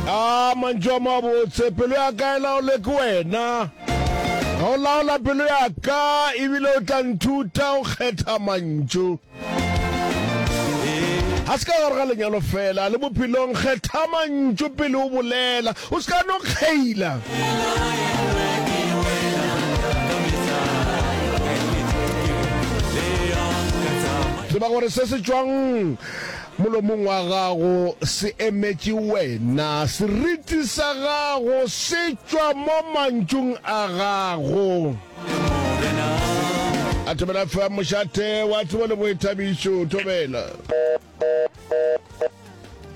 Aa, mantšu a mabotse, pelo ya ka e laolwe ke wena. Ga o laola pelo ya ka, ebile o tla nthuta go kgetha mantšu. Ga se ka gare ga lenyalo fela, le bophelong kgetha mantšu pele o bolela, o se ka no kgeila. Tseba gore se se tšwang Molomong wa gago se emetše wena, seriti sa gago se tšwa mo mantšung a gago. A thobela fa mošate wa tsebo le boithabišo, thobela.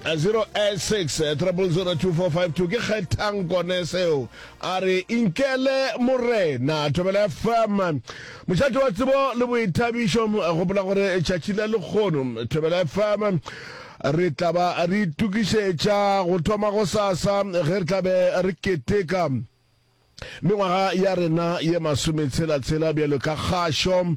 086 3002452 ke kgethang kone seo A re, Inkele, Morena. Thobela FM, mošate wa tsebo le boithabišo. Gopola gore tšatši la lekgono, Thobela FM, re tla ba re itukišetša go thoma go sasa ge re tlabe re keteka mengwaga ya rena ye masometshela-tshela bjalo ka kgašo.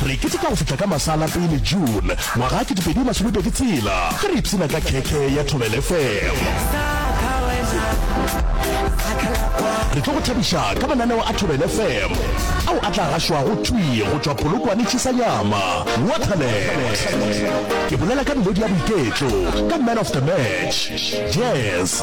Re keteka go fihla ka masala pele June ngwaga ke 2020 tshela ge re ipshina ka khekhe ya Thobel FM. Re tlo go thabiša ka mananeo a Thobel FM ao a tla gašwago thwi go tšwa Polokwane Chisanyama, Waterland. Ke bolela ka melodi ya boiketlo, ka Man of the Match, Jazz,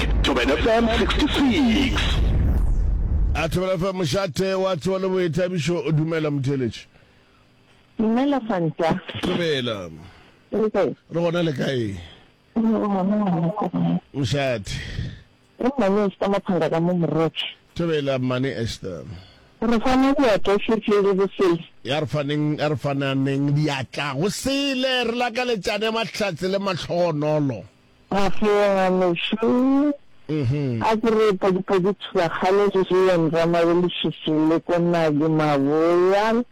Thobela FM 66. A Thobela FM mošate wa tsebo le boithabišo dumela motheletši. Dumela Fanta. Thobela. Re gona le kae? Mošate. Mmane Esther Maphanga ka mo Morotse. Thobela Mmane Esther. Re fana diatla setse le bosele. Ya re faneng a re fananeng diatla go sele re lakaletšane mahlatse le matlhogonolo. Mafeong a mešo a ke re Padipadi Thubakgale le Julian Ramabelešiši le Konali Maboya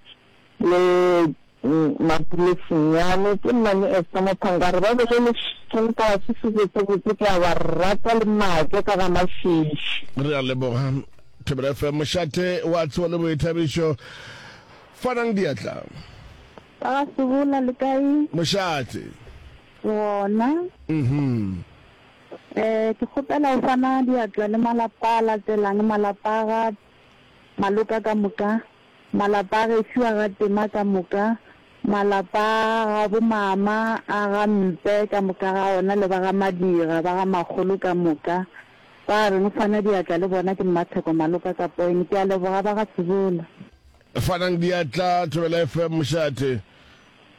le Mapule Senyane ke mmane Esther Mophanga a re ba bolelešitšeng taba se se botsebotse ke a ba rata le maake ka ga mafiši. Re a leboga Thobela FM mošate wa tsebo le boithabišo. Fanang diatla. Ba ga Sebola le kae? Mošate. Gona, ee, ke kgopela go fana diatla le malapa a latelang, malapa a ga Maloka ka moka, malapa a gešo a ga Tema ka moka, malapa a ga bomama a ga Mpe ka moka ga ona le ba ga Madira ba ga Makgolo ka moka. Ba reng o fana diatla le bona ke Mmatheko Maloka ka poene. Ke a leboga ba ga Sebola. Fanang diatla, Thobela FM, mošate.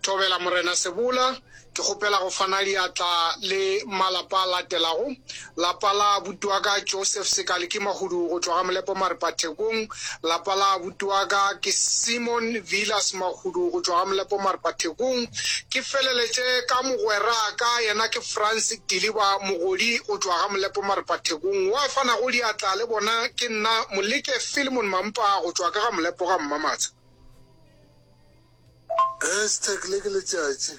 Thobela Morena Sebola, ke kgopela go fana diatla le malapa a latelago, lapa la abuti wa ka Joseph Sekaliki Mahudu go tšwa ga Molepo Maripa Thekong, lapa la abuti wa ka ke Simon Vilas Mahudu go tšwa ga Molepo Maripa Thekong, ke feleletše ka mogweraka yena ke Frans Diliba Mogodi go tšwa ga Molepo Maripa Thekong, wa fanago diatla le bona ke nna Moleke Filemon Mampa go tšwa ka ga Molepo ga Mmamatsha. Hashtag Le ke letšatši.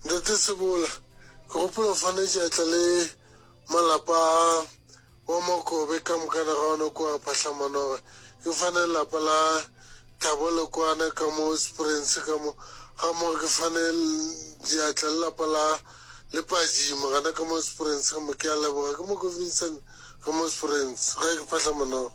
Ntate Sebola, ke gopola o fane tšatla le malapa a wa Makobe ka mokana ga ona kua Phahlamanoge. Ke fane lelapa la Thabo Lekwana ka mo Springs ka mo, ga mmogo ke fane diatla lelapa la Lepaji mogana ka mo Springs ka mo. Ke a leboga. Ke Mokovincent ka mo Springs, gae ke Phahlamanoge.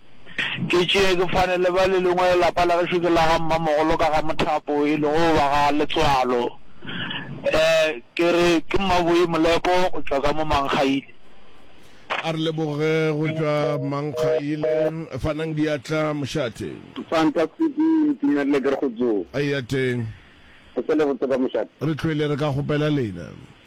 Ke tšee ke fane le ba le lengwe lelapa la gešo ke la ga mmamogolo ka ga mothapo e lego ba ga letswalo eh ke re ke mmaboi molepo go tšwa ka mo mankgaile. A re leboge go tšwa mankgaile fanang diatla mošate. Fantastic ke itumelele ke re go tsoo. Eya teng. Go se le botse kwa mošate. Re tlhwele re ka kgopela lena.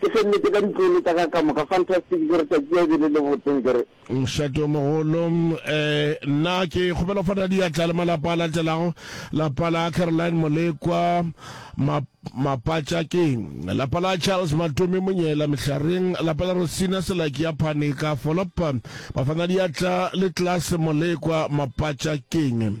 Ke se nnete ka ditlolo tša ka ka moka. Fantastic ke re tšatši ya ebele le botseng ke re. Mošate o mogolo eh nna ke kgopela go fana diatla le malapa a latelago lapa la Caroline Molekwa ma Mapatša ke lapa la Charles Matome Monyela Mehlareng lapa la Rosina Selaki ya Phane ka Folop bafana diatla le Class Molekwa Mapatša keng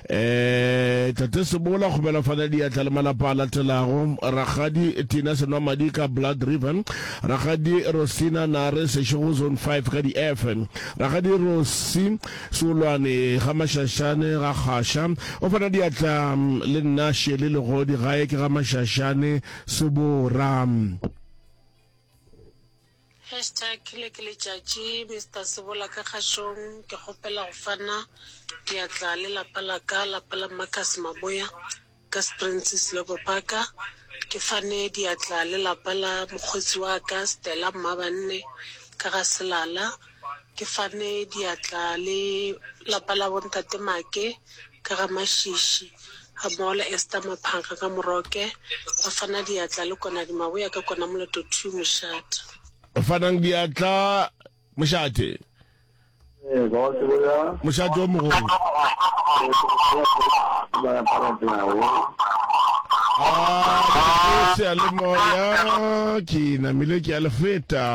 Eeee Tate Sebola go belafana diatla le malapa a latelago, Rakgadi Tina Senwamadi ka Blood River, Rakgadi Rosina Nare Seshego Zone Five ka di Efe, Rakgadi Rosi Seolwane ga Mashashane ga Kgasha, o fana diatla le nna Shirley Legodi gae ke ga Mashashane Sebora. Hashtag le ke letšatši Mister Sebola ka kgašong ke kgopela go fana diatla le lapa la ka lapa la Marcus Maboya ka Springs Slobo Park ke fane diatla le lapa la mokgotsi wa ka Stella Mmabanne ka ga Selala Ke fane diatla le lapa la bontate Make ka ga Mašiši gammogo le Esther Maphanka ka Moroke, ba fana diatla le Konadi Maboya ka kona Moloto Two Mošate. Ba fanang diatla Mošate. Mošate o mogolo. A, le seyalemoya ke namile ke a le feta.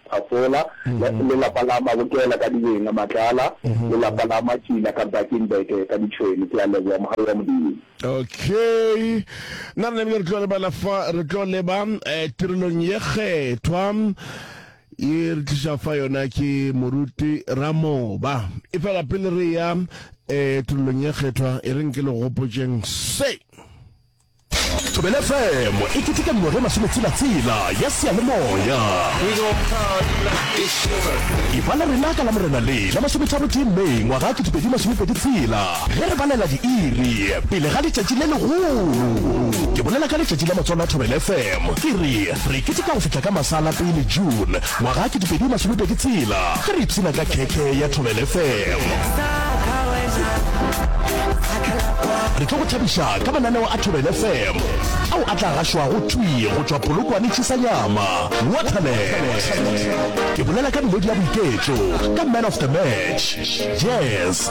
Phafola, lelapa la Mabokela ka Dibeng, Matlala, lelapa la Matsila ka Bakenberg ka Ditšhwene. Ke a leboga, mogale wa Modimo. Okay. Nna re nebile re tlo lebala fa re tlo leba eh, tirelong ye kgethwa e re tliša fa yona ke moruti ramoba e fela pele re ya eh, tirelong ye kgethwa e re nke le gopotšeng se Thobela FM e keteka mengwaga e masometshela-tshela ya seyalemoya. Efa la rena ka Lamorena le la masometharo tee May ngwaga wa ketepedi masomepedi tshela ge re balela diiri pele ga letšatši le legolo. Ke bolela ka letšatši la matswalo a Thobela FM ke re re keteka go fihla ka masala pele June Ngwaga ke dipedi masome pedi tshela ge re ipshina ka khekhe ya Thobela FM. Re tlo go thabiša ka mananeo a Thobela FM ao a tla gašwago thwi go tšwa Polokwane Tšhisanyama, Waterland. Ke bolela ka melodi ya boiketlo, ka Man of the Match, Jazz,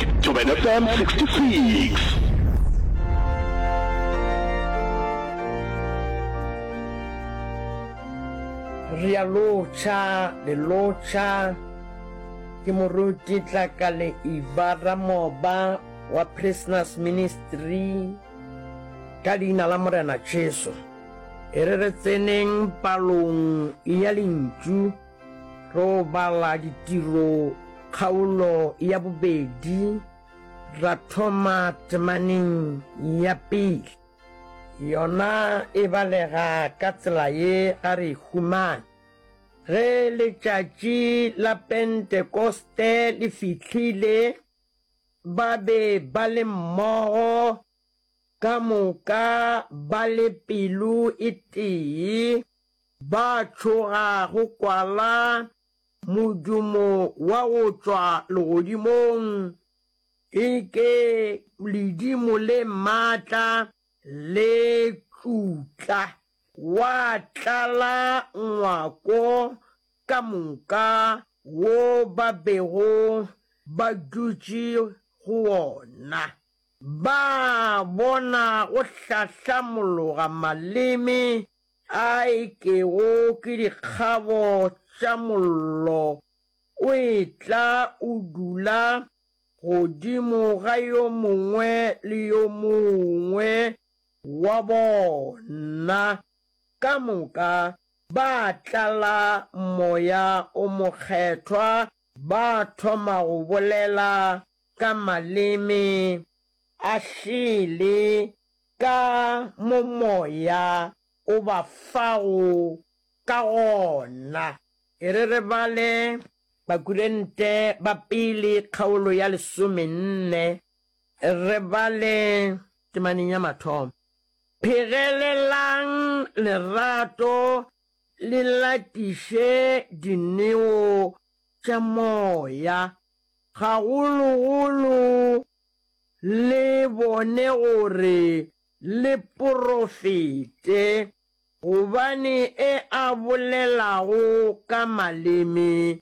Thobela FM 66. Re a lotšha, le lotšha. Ke moruti Tlakale Eva Ramoba wa Prisoners Ministry ka leina la Morena Jesu. E re re tseneng palong ya lentšu. Ro bala ditiro kgaolo ya bobedi, ra thoma temaneng ya pele. Yona e balega ka tsela ye ga re e humane. Ge letšatši la Pentekoste le fihlile, ba be ba le mmogo, ka moka ba le pelo e tee. Ba tšhoga go kwala modumo wa go tšwa legodimong, e ke ledimo le matla le tšutla. Wa tlala ngwako ka moka wo ba bego ba dutše go wona. Ba bona go hlahlamologa maleme. A e kego ke dikgabo tša mollo, o etla o dula godimo ga yo mongwe le yo mongwe wa bona. Ka moka ba tlala Moya o Mokgethwa, ba thoma go bolela ka maleme a šele. Ka mo Moya o ba fago ka gona. E re re bale Bakurente ba Pele kgaolo ya lesomenne, re bale temaneng ya mathomo, Phegelelang lerato le latiše dineo tša moya, gagologolo le bone gore le profete, gobane e a bolelago ka maleme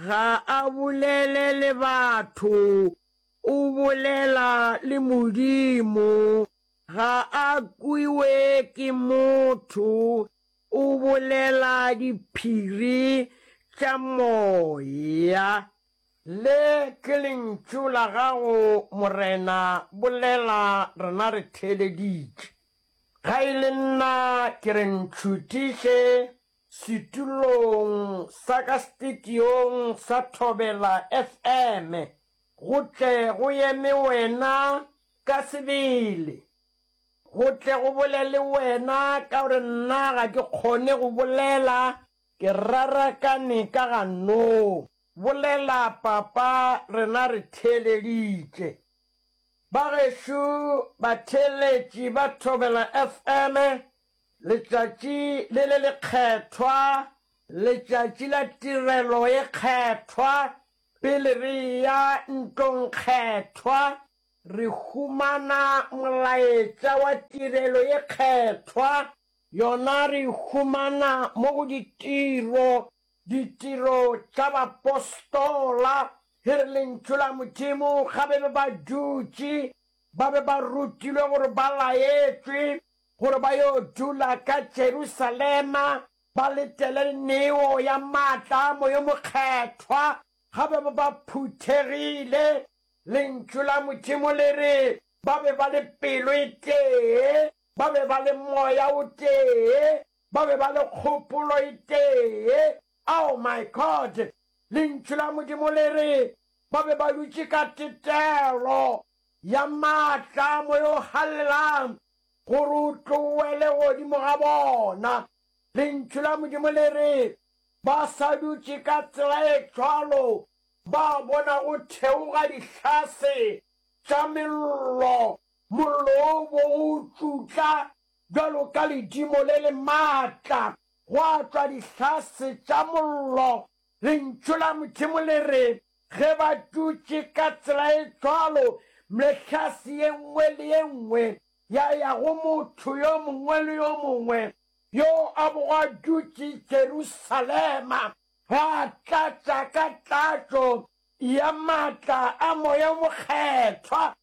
ga a bolele le batho, o bolela le Modimo, ga a kwiwe ke motho, o bolela diphiri tša moya. Le ke lentšu la gago, Morena, bolela, rena re theeleditše. Ga e le nna, ke re ntšhutiše setulong sa ka stitiong sa Thobela FM, go tle go eme Wena ka sebele, go tle go bolele Wena, ka gore nna ga ke kgone go bolela, ke rarakane ka ganong. Bolela, Papa, rena re theeleditše. Ba gešo batheeletši ba Thobela FM, letšatši le le lekgethwa, letšatši la tirelo e kgethwa, pele re eya ntlong kgethwa, re humana molaetša wa tirelo e kgethwa, yona re e humana mo go ditiro Ditiro tša Bapostola, e re Lentšu la Modimo ga be be ba dutše, ba be ba rutilwe gore ba laetšwe gore ba yo dula ka Jerusalema, ba letele neo ya maatla a Moya o Mokgethwa. Ga be be ba phuthegile. Lentšu la Modimo le re ba be ba le pelo e tee, ba be ba le moya o tee. Ba be ba le kgopolo e tee. Ao, my God! Lentšu la Modimo le re, Ba be ba dutše ka tetelo ya maatla a Moya o Galelang gore o tloele godimo ga bona. Lentšu la Modimo le re, Ba sa dutše ka tsela e cwalo, ba bona go theoga dihlase tša mello, mollo wo o bogo o tšutla, Bjalo ka ledimo le le matla, gwa tšwa dihlase tša mollo. Lentšu la Modimo le re, Ge ba dutše ka tsela e cwalo, mehlase ye nngwe le ye nngwe ya ya go motho yo mongwe le yo mongwe yo a bogo a dutše Jerusalema, ba tlatša ka tlatšo ya matla a Moya o Mokgethwa.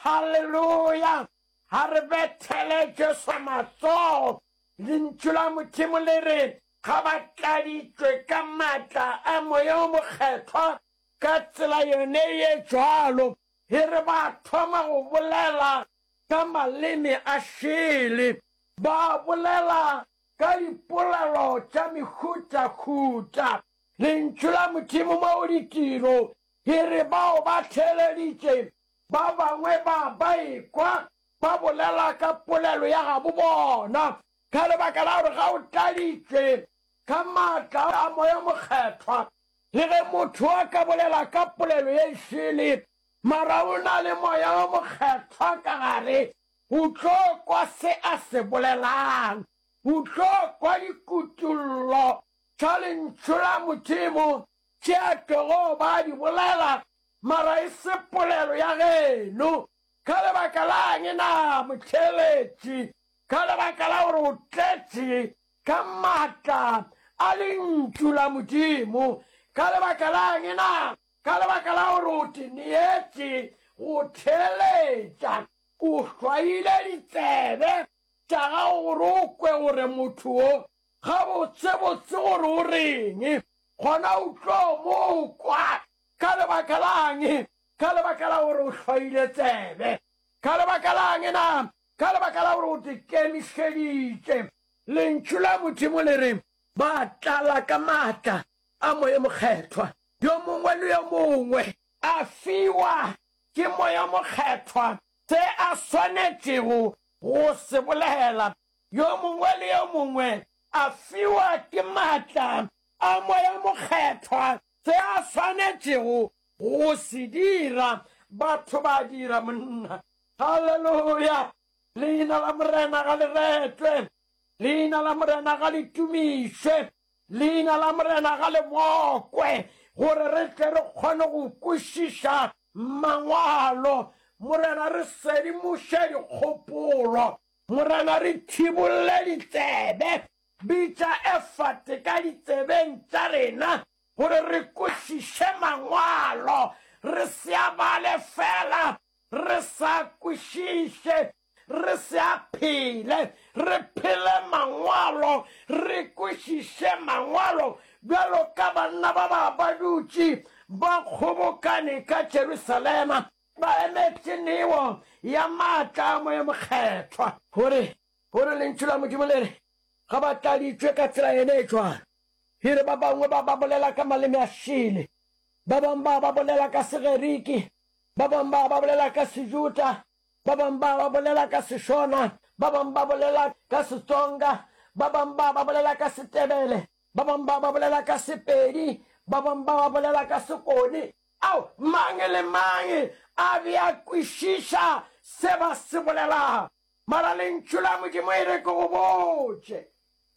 Haleluya! Ga re bethele Jesu matsogo. Lentšu la Modimo le re, Ga ba tladitšwe ka maatla a Moya o Mokgethwa ka tsela yone ye cwalo, e re ba thoma go bolela ka maleme a šele, ba bolela ka dipolelo tša mehutahuta. Lentšu la Modimo mo go ditiro e re, Bao ba theeleditše Ba bangwe ba ba ekwa ba bolela ka polelo ya gabo bona ka lebaka la gore ga o tladitšwe ka maatla a Moya Mokgethwa. Le ge motho a ka bolela ka polelo ye šele, mara o na le Moya wo Mokgethwa ka gare, o tlo kwa se a se bolelang. O tlo kwa dikutollo tša Lentšu la Modimo tše a tlogo ba a di bolela, mara e se polelo ya geno. Ka lebaka la'ng na, motheeletši? Ka lebaka la gore o tletše ka matla a Lentšu la Modimo. Ka lebaka la'ng na? Ka lebaka la gore o te neetše go theeletša. O hlwaile ditsebe tša gago gore o kwe gore motho wo Gabotsebotse gore o reng, gona o tlo mo kwa. Ka lebaka la'ng? Ka lebaka la gore o hloile tsebe. Ka lebaka la'ng na? Ka lebaka la gore o di kemišeditše. Lentšu la Modimo le re, Ba tlala ka matla a Moya Mokgethwa. Yo mongwe le yo mongwe a fiwa ke Moya Mokgethwa se a swanetšego go se bolela. Yo mongwe le yo mongwe a fiwa ke maatla a Moya Mokgethwa se a swanetšego go se dira. Batho ba dira, monna. Haleluya! Leina la Morena ga le retlwe. Leina la Morena ga le tumišwe. Leina la Morena ga le mokwe, gore re tle re kgone go kwešiša Mangwalo. Morena, re sedimoše dikgopolo. Morena, re thibolle ditsebe. Bitša efate ka ditsebeng tša rena gore re kwešiše Mangwalo, re se a bale feela re sa a kwešiše, re se a phele. Re phele Mangwalo, re kwešiše Mangwalo, bjalo ka banna ba ba ba dutše ba kgobokane ka Jerusalema. Ba emetše neo ya maatla a Moya Mokgethwa. Gore, gore Lentšu la Modimo le re, Ga ba tladitšwe ka tsela yene e jwalo. E re, Ba bangwe ba ba bolela ka maleme a šele, ba bangwe ba ba bolela ka Segeriki, ba bangwe ba ba bolela ka Sejuta, ba bangwe ba ba bolela ka Seshona, ba bangwe ba bolela ka Setsonga, ba bangwe ba ba bolela ka Setebele, ba bangwe ba ba bolela ka Sepedi, ba bangwe ba ba bolela ka Sekone. Ao, mang le mang a be a kwešiša se ba se bolelago. Mara Lentšu la Modimo e re ke go botše,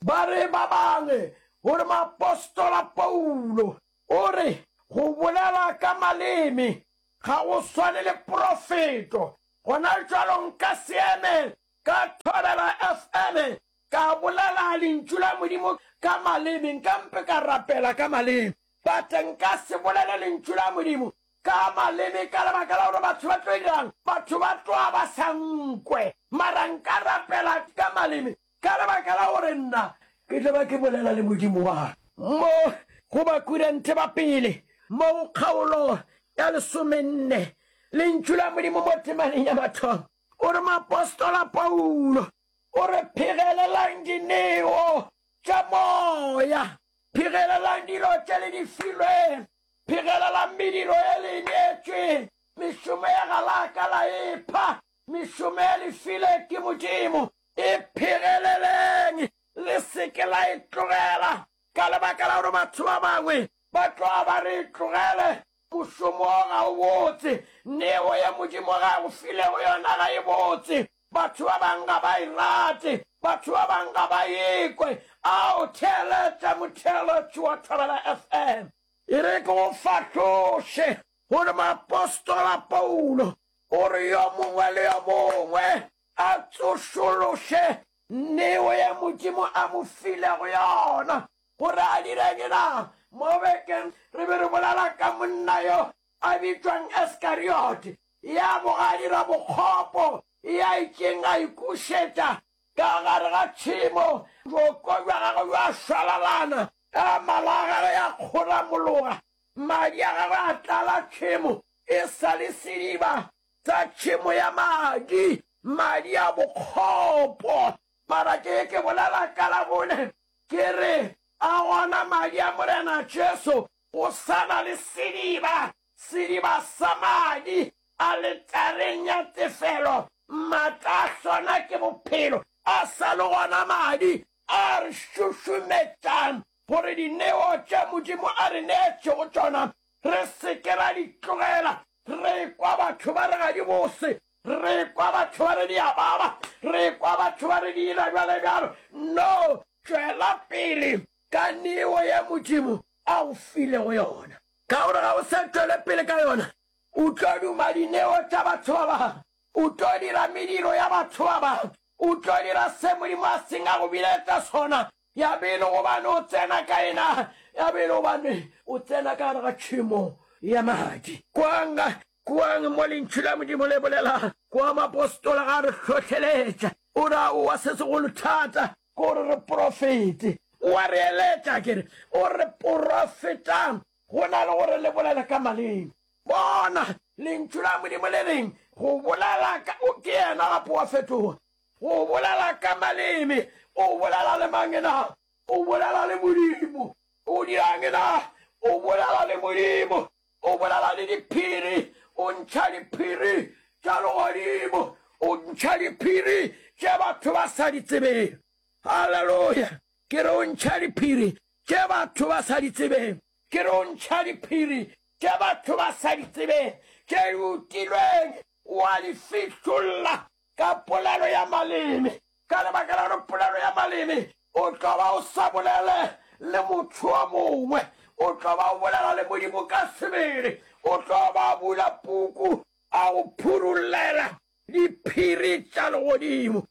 ba re ba bangwe, gore moapostola Paulo o re, Go bolela ka maleme ga go swane le profeto. Gona jalo nka se eme ka thobela FM ka bolela Lentšu la Modimo ka maleme, nka mpe ka rapela ka maleme. But nka se bolele lentšu la Modimo ka maleme ka lebaka la gore batho ba tlo dirang, batho ba tloa ba sa nkwe. Mara nka rapela ka maleme ka lebaka la gore nna ke tlo ba ke bolela le Modimo wa ka. Mo go Bakorinthe ba pele mo go kgaolo ya lesomenne, lentšu la Modimo mo temaneng ya mathomo, o re moapostola Paulo o re phegelelang dineo tša moya. Phegelelang dilo tše le di filweng. Phegelelang mediro ye le e neetšweng. Mešomo ye ga la ka la e pha. Mešomo ye le file ke Modimo, e phegeleleng, le se ke la e tlogela ka lebaka la gore batho ba bangwe ba tloga ba re e tlogele. Mošomo wo ga o botse. Neo ye Modimo ge a go filego yona ga e botse. Batho ba bang ga ba e rate. Batho ba bang ga ba e kwe. A o theeletša motheeletši wa Thobela FM? E re ke go fahloše gore moapostola Paulo o re yo mongwe le yo mongwe a tsošološe neo ye Modimo a mo filego yona. Gore a dire'ng na? Mo bekeng re be re bolela ka monna yo a bitšwang Iskariote, ya boga a dira bokgopo, ya itšeng a ikušetša ka gare ga tšhemo, bjoko bja gagwe bja šwalalana ka mala a gagwe ya kgoramologa, madi a gagwe a tlala tšhemo, e sa le sediba sa tšhemo ya madi, madi a bokgopo. Mara ke ye ke bolela ka Labone, ke re, A gona madi a Morena Jesu Go sa na le sediba, sediba sa madi, aletareng ya tefelo, maatla a sona ke bophelo, a sa le gona madi, a re šušumetšang gore dineo tše Modimo a re neetšego tšona re se ke ra di tlogela. Re ekwa batho ba re ga di bose, re ekwa batho ba re di a baba, re ekwa batho ba re di ila bjalo bjalo. No, tšwela pele. ka neo ye Modimo a go filego yona, ka gore ga o se tšwele pele ka yona, o tlo duma dineo tša batho ba bangwe, o tlo dira mediro ya batho ba bangwe, o tlo dira se Modimo a seng a go biletša sona, ya be e le gobane o tsena ka yena, ya be e le gobane o tsena ka gare ga tšhemo ya madi. Kwang, kwang mo Lentšu la Modimo le bolela, kwa moapostola a re hlohleletša, o ra, O wa se segolo thata, Ko re re profete. O a re eletša, ke re, o re, Profetang, go na le gore le bolele ka maleme. Bona! Lentšu la Modimo le reng? Go bolela ka, o ke yena gape wa fetoga. Go bolela ka maleme. O bolela le mang na? O bolela le Modimo. O dira'ng na? O bolela le Modimo. O bolala le diphiri, o ntšha diphiri tša legodimo, o ntšha diphiri tše batho ba sa di tsebeng. Haleluya! Ke re o ntšha diphiri tše batho ba sa di tsebeng. Ke re o ntšha diphiri tše batho ba sa di tsebeng, tše di utilweng, wa di fihlolla Ka polelo ya maleme. Ka lebaka la gore polelo ya maleme o tlo ba o sa bolele le motho o mongwe, o tlo ba o bolela le Modimo ka sebele. O tlo ba a bula puku a go phurullela diphiri tša legodimo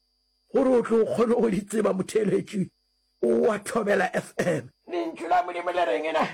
gore o tlo kgone go di tseba. Motheeletši wa Thobela FM. Lentšu la Modimo le reng na?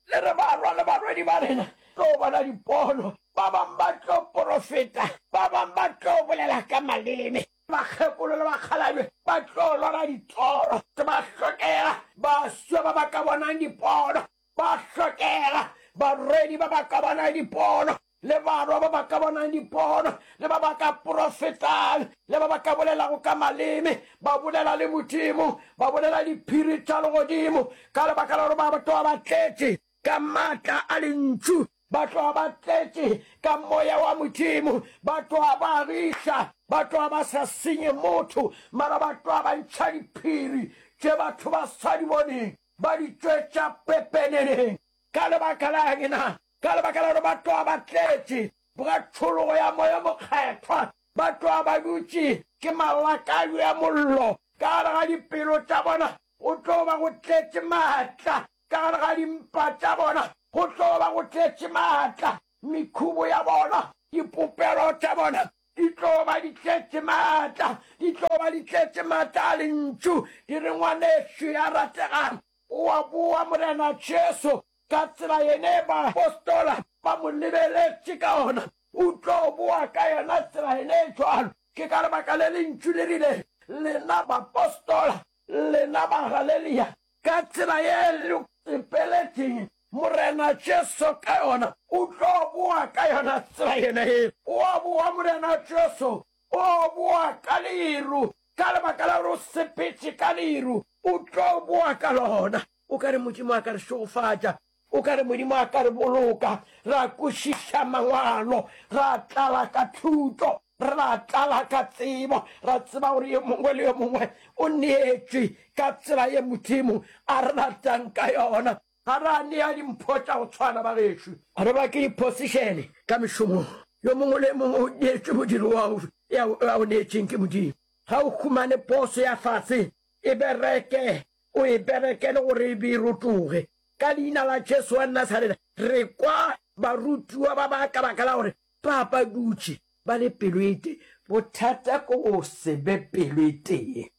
Le re balwa le balwedi ba rena tlo bona dipono, ba bang ba tlo profeta, ba bang ba tlo bolela ka maleme, bakgekolo le bakgalabje ba tlo lora ditoro, ke ba hlokega baswa ba ba ka bonang dipono, ba hlokega barwedi ba ba ka bonang dipono. le barwa ba ba ka bonang dipono, le ba ba ka profetang, le ba ba ka bolelago ka maleme, ba bolela le Modimo, ba bolela diphiri tša legodimo, ka lebaka la gore ba ba tloga ba tletše ka matla a lentšu, ba tloga ba tletše ka Moya wa Modimo, ba tloga ba agiša, ba tloga ba sa senye motho, mara ba tloga ba ntšha diphiri tše batho ba sa di boneng, ba di tšwetša pepeneneng. Ka lebaka la eng na? Ka lebaka la gore ba tloga ba tletše boka tšhologo ya Moya o Mokgethwa, ba tloga ba dutše ke malakabi a mollo ka gare ga dipelo tša bona, go tlo ba go tletše maatla ka gare ga dimpa tša bona, go tlo ba go tletše maatla, mekhubo ya bona, dipopelo tša bona di tlo ba di tletše maatla, di tlo ba di tletše maatla a Lentšu. Ke re, Ngwanešu ya rategang, o a boa, Morena Jesu, Ka tsela yene baapostola ba mo lebeletše ka ona, o tlo boa ka yona tsela yene e cwalo. Ke ka lebaka le Lentšu le rile, Lena baapostola, lena Bagalelia, ka tsela ye le sepeletšeng Morena Jesu ka yona, o tlo boa ka yona tsela yene ye. O a boa, Morena Jesu. O boa ka leru. Ka lebaka la gore o sepetše ka leru, o tlo boa ka lona. O ka re Modimo a ka re šegofatša. O ka re Modimo a ka re boloka. Ra kwešiša Mangwalo. Ra tlala ka thuto. Ra tlala ka tsebo. Ra tseba gore yo mongwe le yo mongwe o neetšwe ka tsela ye Modimo a re ratang ka yona. Ga ra nea dimpho tša go tshwana, bagešo. Re ba ke diphosišene ka mešomong. Yo mongwe le yo mongwe o neetšwe modiro wa go ya o neetšeng ke Modimo. Ga o humane poso ya fase e bereke O e berekele gore e be e rotoge. Ka Leina la Jesu wa Nasareta, re kwa barutiwa ba ba ka baka la gore ba ba dutše ba le pelo e tee. Bothata ke go se be pelo e tee.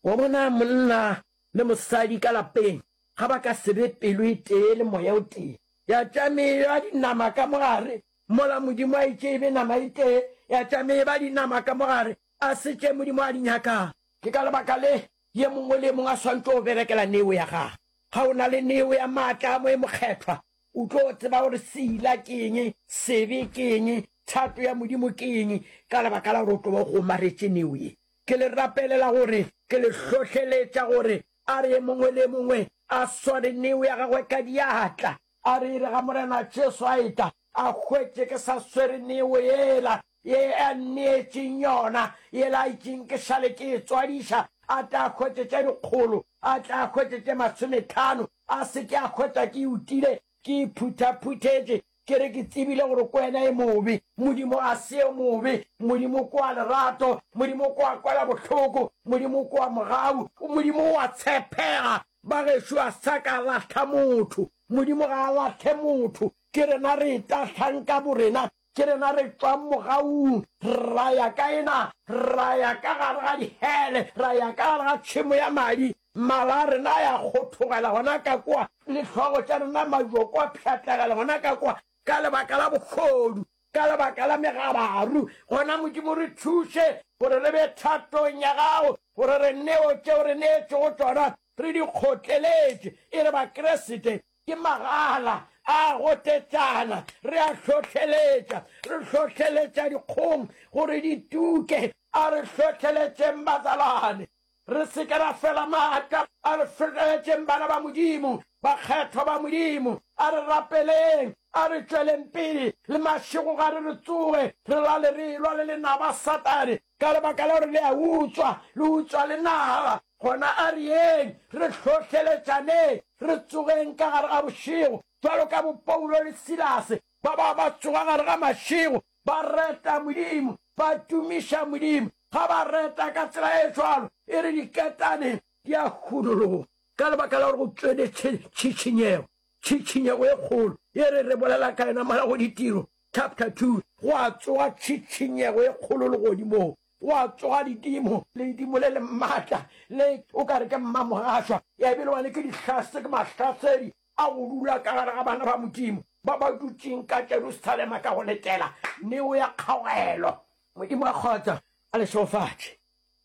Wa bona, monna le mosadi ka lapeng, ga ba ka se be pelo e tee le Moya o tee. Ya tša me e ba dinama ka mo gare, mola Modimo a itše e be nama e tee, ya tša me e ba dinama ka mo gare, a se tše Modimo a di nyakago. Ke ka lebaka le Ye mongwe le ye mongwe a swantšwe go berekela neo ya gage. Ga o na le neo ya maatla a Moye Mokgethwa, o tlo tseba gore seila ke eng, sebe ke eng, thato ya Modimo ke eng, ka lebaka la gore o tlo ba o kgomaretše neo ye. Ke le rapelela gore, ke le hlohleletša gore, a re ye mongwe le ye mongwe a sware neo ya gagwe ka diatla. A re ire ga Morena Jesu a etla, a hwetše ke sa swere neo yela, ye a nneetšeng yona, yela a itšeng ke šale ke e tswadiša, a tle a hwetše tše dikgolo, a tle a hwetše tše masometlhano, a se ke a hwetša ke utile, ke iphuthaphuthetše, ke re ke tsebile gore ko wena e mobe. Modimo a se yo mobe, Modimo ko wa lerato, Modimo ko wa kwela bohloko, Modimo ko wa mogau, Modimo o a tshepega. Bagešo a sa ka lahla motho. Modimo ga a lahle motho. Ke rena re etahlang ka borena. Ke rena re tšwang mogaung ra ya ka ena, ra ya ka gare ga dihele, ra ya ka gare ga tšhemo ya madi. Mala a rena a ya kgothogela gona ka kwa, le hlogo tša rena majoko a pšhatlegela gona ka kwa, ka lebaka la bogodu. Ka lebaka la megabaru, gona Modimo re thuše gore re be thatong ya Gago, gore re neo tšeo re neetšwego tšona re di kgotleletše. E re Bakriste ke magala a gotetšana, re a hlohleletša, re hlohleletša dikgong gore di tuke. A re hlohleletšeng, bazalwane. Re se ke ra fela maatla a re fetogetšeng bana ba Modimo, bakgethwa ba Modimo. A re rapeleng, a re tšweleng pele le mašego gare re tsoge re lale re elwa le lenaba Satane ka lebaka la gore le a utswa, le utswa le naba. Gona a re yeng re hlohleletšaneng, re tsogeng ka gare ga bošego, bjalo ka bo Paulo le Silase ba ba ba tsoga gare ga mašego ba reta Modimo, ba tumiša Modimo. Ga ba reta ka tsela e jwalo, e re diketane di a hunologa ka lebaka la gore go tšweletše tšhitšhinyego, tšhitšhinyego e kgolo, e re re bolela ka yona mola go Ditiro chapter 2. Go a tsoga tšhitšhinyego e kgolo legodimong, go a tsoga ledimo, ledimo le le matla, le o ka re ke mmamogašwa, ya e bile wane ke dihla, se ke mahlasedi, a go dula ka gare ga bana ba Modimo ba ba dutšeng ka Jerusalema ka go letela neo ya kgaogelo. Modimo wa kgotso a le šegofatše.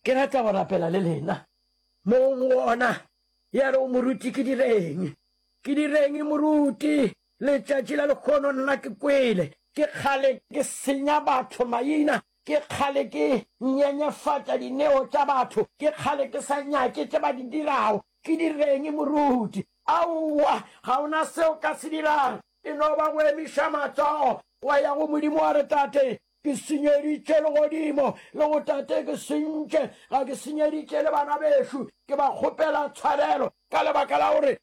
Ke rata go rapela le lena. Mong wona ya re, O moruti, ke direng? Ke direng, moruti? Letšatši la lekgono nna ke kwele ke kgale ke senya batho maina Ke kgale ke nyenyefatša dineo tša batho, ke kgale ke sa nyake tše ba di dirago. Ke direng, moruti? Aowa, ga o na se o ka se dirago, e no ba go emiša matsogo, wa ya go Modimo wa re, Tate, ke senyeditše legodimo, le go Tate, ke sentše, ga ke senyeditše le bana bešo, ke ba kgopela tshwarelo ka lebaka la gore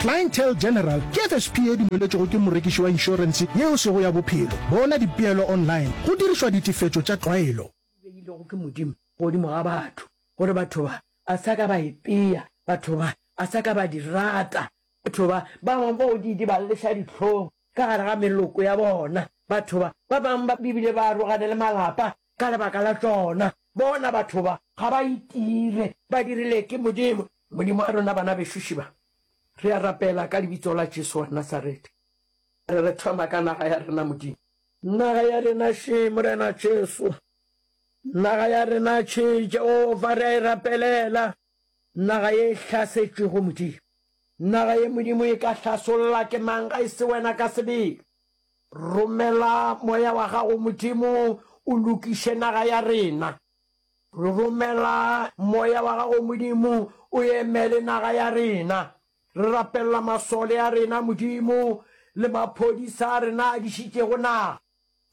Clientele General ke FSP e dumeletšwego ke morekiši wa inšorense yeo sego ya bophelo. Bona dipeelo online go dirišwa ditefetšo tša tlwaelo. E beilwego ke Modimo godimo ga batho, gore batho ba a sa ka ba e pea, batho ba a sa ka ba di rata. Batho ba ba bangwe ba o di idibaleša dihlong ka gare ga meloko ya bona, batho ba ba bangwe ba bile ba arogana le malapa Ka lebaka la tšona, bona, batho ba ga ba itire, ba dirile ke Modimo. Modimo a rena bana bešuši ba, re a rapela ka Lebitso la Jesu wa Nasarete. Re re thoma ka naga ya rena, Modimo. Naga ya rena še, Morena Jesu. Naga ya rena še, Jehofa, re a e rapelela. Naga ye e hlasetšwego, Modimo. Naga ye, Modimo, e ka hlasolla ke mang ga e se Wena ka sebele? Romela Moya wa Gago, Modimo, o lokiše naga ya rena. Re romela Moya wa Gago, Modimo, o emele naga ya rena. Re rapelela masole a rena, Modimo, le maphodisa a rena a dišitšego naga,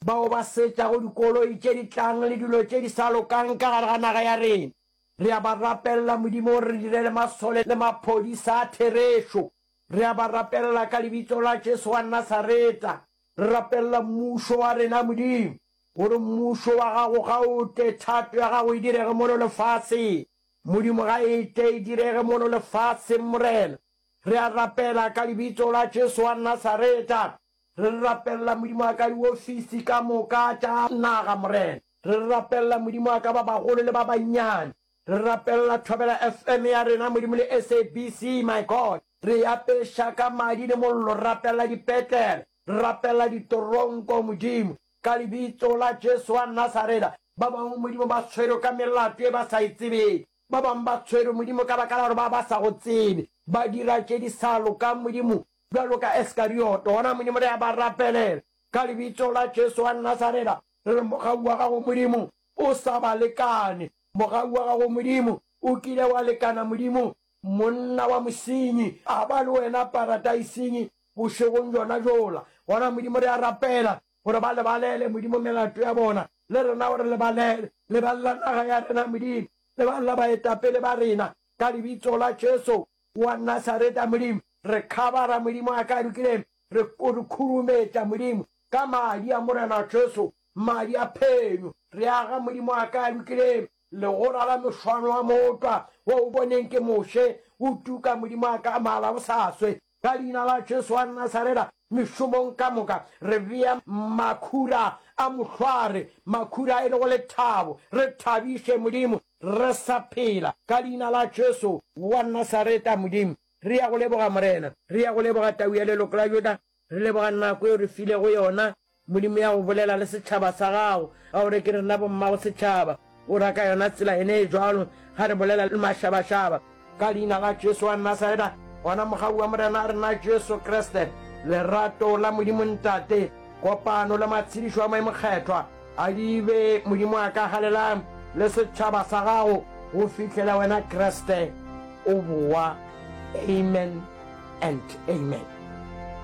bao ba setšago dikoloi tše di tlang le dilo tše di sa lokang ka gare ga naga ya rena. Re a ba rapelela, Modimo, gore re direle masole le maphodisa a therešo. Re a ba rapelela ka Lebitso la Jesu wa Nasareta. Re rapelela Mmušo wa rena, Modimo, gore Mmušo wa Gago ga o tle, thato ya Gago e direge mono lefaseng, Modimo, ga e tle e direge mono lefaseng, Morena. Re a rapela ka Lebitso la Jesu wa Nasareta. Re rapelela, Modimo wa ka, diofisi ka moka tša naga, Morena. Re rapelela, Modimo wa ka, ba bagolo le ba bannyane. Re rapelela Thobela FM ya rena Modimo le SABC my God. Re e apeša ka madi le mollo, re rapelela dipetlele, re rapelela ditoronko Modimo. Ka lebitso la Jesu wa Nasareta, ba bangwe Modimo ba tshwerwe ka melato e ba sa e tsebeng. Ba bangwe ba tshwerwe Modimo ka baka la gore ba ba sa go tsebe, ba dira tše di sa lokang Modimo, bjalo ka Eskarioto. Gona Modimo re a ba rapelela ka lebitso la Jesu wa Nasareta, re re mogau wa gago Modimo o sa ba lekane. Mogau wa gago Modimo, o kile wa lekana Modimo, monna wa mosenyi, a ba le wena paradaising bošegong bjona bjola. Gona, Modimo, re a rapela gore ba lebalele, Modimo, melato ya bona. Le rena o re lebalele. Lebalela naga ya rena, Modimo. Lebalela baetapele ba rena, ka Lebitso la Jesu wa Nasareta, Modimo. Re khabara, Modimo, a ka dukileng, re, re khurumetša, Modimo, ka Madi a Morena Jesu. Madi a phenyo, re aga, Modimo a ka a lokile, Legora la mešwano a motwa, Wo o boneng ke Moshe, O tuka, Modimo a ka a mala go sa swe. Ka Leina la Jesu wa Nasareta, Mešomong ka moka, re bea makhura a mohlware, Makhura e lego lethabo, Re thabiše, Modimo, re sa phela, Ka Leina la Jesu wa Nasareta, Modimo, re ya go leboga, Morena, Re ya go leboga, Tau ya leloko la Juda. Re leboga nako yeo re filego yona, Modimo, ya go bolela le setšhaba sa gago, ka gore ke rena bommago setšhaba. O ra ka yona tsela yene e jwalo ga re bolela le mašabašaba. Ka Leina la Jesu wa Nasareta, gona mogau wa Morena a rena Jesu Kriste, lerato la Modimo Ntate, kopano le matshedišo a Moya Mokgethwa a di be, Modimo wa ka, galelang le setšhaba sa gago go fihlela wena Kriste o bowa. Amen and Amen.